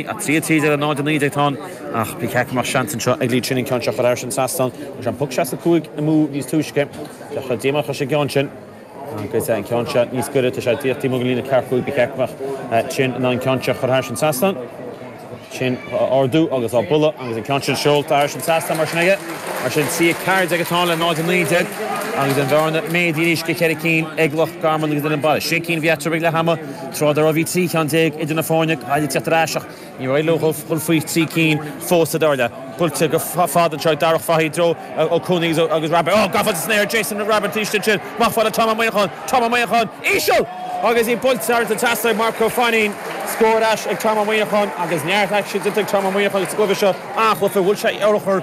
3, 13 ar 0, 19 atá ann ach pic aici mar seans anseo ag Lee Chin an ceann seo a chur thar an trasnán agus an poc 65 amú níos túisce deachaigh díomá chuir sé gceann sin agus an ceann seo níos goire tá sé díreach taobh amuigh den líne ceathracha cúig pic aici ach Chin in ann ceann seo chur thar an trasnán sin ardú agus á bualadh agus an ceann sin seolta thar an trasnán mar sin aige mar sin 13 ag atá le 0 19 agus an bhearna méadaithe anois go ceithre cinn ag Loch Garman agus den an bail sé cinn bheatrabh ag leath ama Tráth dá raibh bhí trí cheann déag idir na foirne Gaillimh ag teacht ar ais ach. Níor éirigh leo dhul faoi thrí cinn fós sa dara leath. Buailte go fada anseo ag Darach Fahy i dtreo Ó Cuana agus Rabbitte. Gafa san aer ag Jason Rabbitte arís ansin. Amach fad le Tom Ó Muineacháin. Tom Ó Muineacháin íseal! Agus é buailte thar an trasnán ag Mark Fanning. Scór ar ais ag Tom Ó Muineacháin agus neart aicsin déanta ag Tom Ó Muineacháin sa gcluiche seo. An-chluiche. Bhuail sé urchar.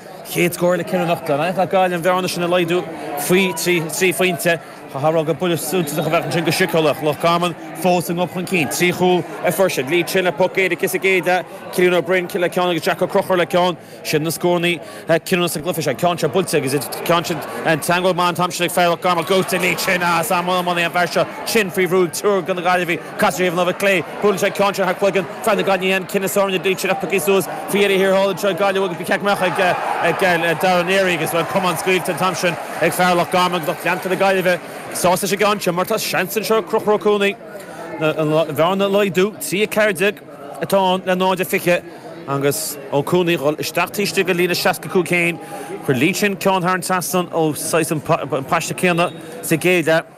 chéad scór le ceithre nóiméad. In ainneoin Gaillimh an bhearna sin a laghdú faoi trí phointe, thabharfadh an buille suntasach a bheadh ansin go síceolaíoch Loch Garman fós a ngob chun cinn, trí chúl ar fuirseadh, Lee Chin le poc éirice is ag éide, Cillian Ó Broin le ceann agus Jack Ó Conchúir le ceann. Sin na scórannaí cinniúna sa gcluiche seo, an ceann seo buailte agus an ceann sin teagmháil mhaith an t-am sin ag fear Loch Garman, Lee Chin. Is iomaí an fear seo, Chin, faoi bhrú ag triúr de na Gaillimhigh. Ar thaobh na láimhe clé. Buaileann sé ceann seo thar cloigeann fear na Gaillimhe an cinneadh soirn a d'fhuíll sireach pioctha suas faoi dheireadh thiar thall anseo ag Gaillimh agus ba cheart go mbeadh ag Dara Leary agus bhuel camán scaoilte an t-am sin ag fear Loch Garman agus lucht leanta na Gaillimhe sásta leis an gceann sin mar tá seans anseo ag Conchúr Ó Cuana an bhearna a laghdú trí 14 atá ann le 0 a 20 agus Ó Cuana dhul isteach taobh istigh de líne 65 chéin chuir Lee Chin ceann thar an trasnán ó saghas an paiste céanna sa gcéad leath.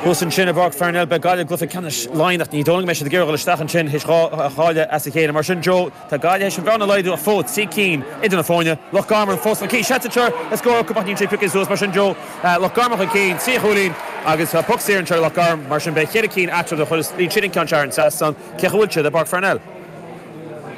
Thuas ansin i bPáirc Pharnell beidh Gaillimh i gcluiche ceannais Laighean ach ní dóigh liom go mbeidh siad ag iarraidh dul isteach ansin théis dhá chailliúint as a chéile. Mar sin, Joe, tá Gaillimh théis an bhearna a laghdú ach fós trí cinn idir na foirne. Loch Garman fós chun cinn. Seans anseo le scór acu ach níl siad piocaithe suas. Mar sin, Joe, Loch Garman chun cinn, trí chúilín agus tá poc saor anseo ag Loch Garman. Mar sin, beidh ceithre cinn eatarthu. Má chuireann siad an ceann seo thar an trasnán. Cén chaoi a bhfuil siad i bPáirc Pharnell?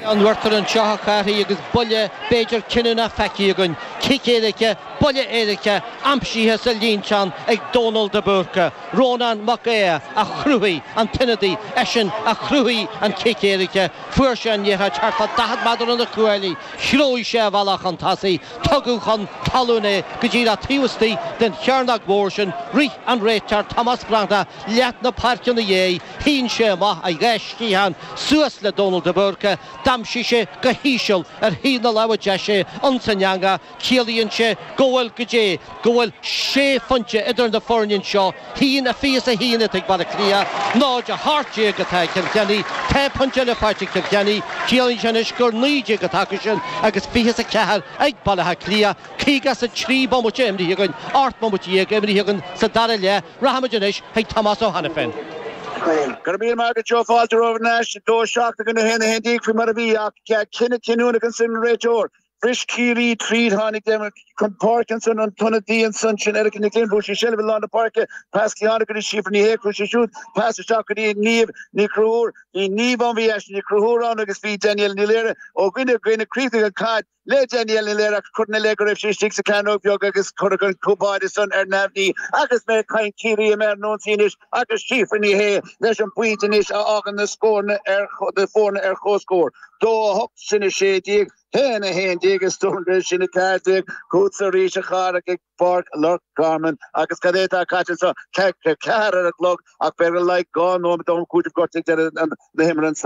An bhfeictear anseo a Charthaigh agus buille b'fhéidir cinniúna feicthe againn, cic éirice, buille éirice aimsithe sa líontán ag Dónal de Búrca, Rónán Mac Aodha a chruthaigh an t-ionadaí, eisean a chruthaigh an cic éirice, fuair sé an liathróid thart fá 40 méadar ó na cuaillí, throid sé a bhealach chun tosaigh, tugadh chun talún é go díreach taobh istigh den chearnóg mhór sin, rith an réiteoir Tomás Breathnach leath na páirce ina dhiaidh, Shín sé amach a dhá sciathán suas le Dónal de Búrca, d'aimsigh sé go híseal ar thaobh na láimhe deise, ins an eanga, ciallaíonn sé go bhfuil, go dté, go bhfuil sé phointe idir na foirne anseo, a haon a fiche is a haon atá ag Baile Átha Cliath, 0 18 atá ag Cill Chainnigh, tá pointe eile faighte ag Cill Chainnigh, ciallaíonn sé anois gur 19 atá acu sin agus 20 is a ceathair ag Baile Átha Cliath, caoga is a trí bomaite imrithe againn, ocht mbomaite dhéag imrithe againn sa dara leath. Rachaimid anois chuig Tomás Ó hAiniféin. Go raibh míle maith agat Joe, fáilte romhaibh thar n-ais, 2, 7, i gcoinne 1, 11 faoi mar a bhí ach cinneadh cinniúnach ansin ag an réiteoir. Bhris Ciarraí tríd, tháinig Dermot chun páirce ansin an t-ionadaí ansan sin Erica Nic Fhinn, bhuaigh sí seilbh i lár na páirce, pas cinn tháinig go dtí Síofra Ní Shé, í siúd, pas isteach go dtí Niamh Ní Chonchúir, bhí Niamh ann, bhí Aisling Ní Chonchúir ann agus bhí Danielle Ní Laoire ó dhuine go duine, chríochnaigh an chaid. Le Danielle Ní Laoire ach cuireadh ina leith go raibh sí istigh sa chearnóg bheag agus cuireadh an cúl báire san ar neamhní. Agus mé ag caint Ciarraí i mbun ionsaí anois agus Síofra Ní Shé leis an bpointe anois a fhágann na foirne ar comhscór, dó a hocht sin a sé déag, haon a haon déag is dócha sin a ceathair déag chugatsa arís a chara ag Páirc Loch Garman. Agus cad é atá caite anseo? Ceathair ar an chlog ach b'fhéidir le haghaidh dhá nóiméad d'am cúitimh gortaithe ag deireadh na himeartha anseo.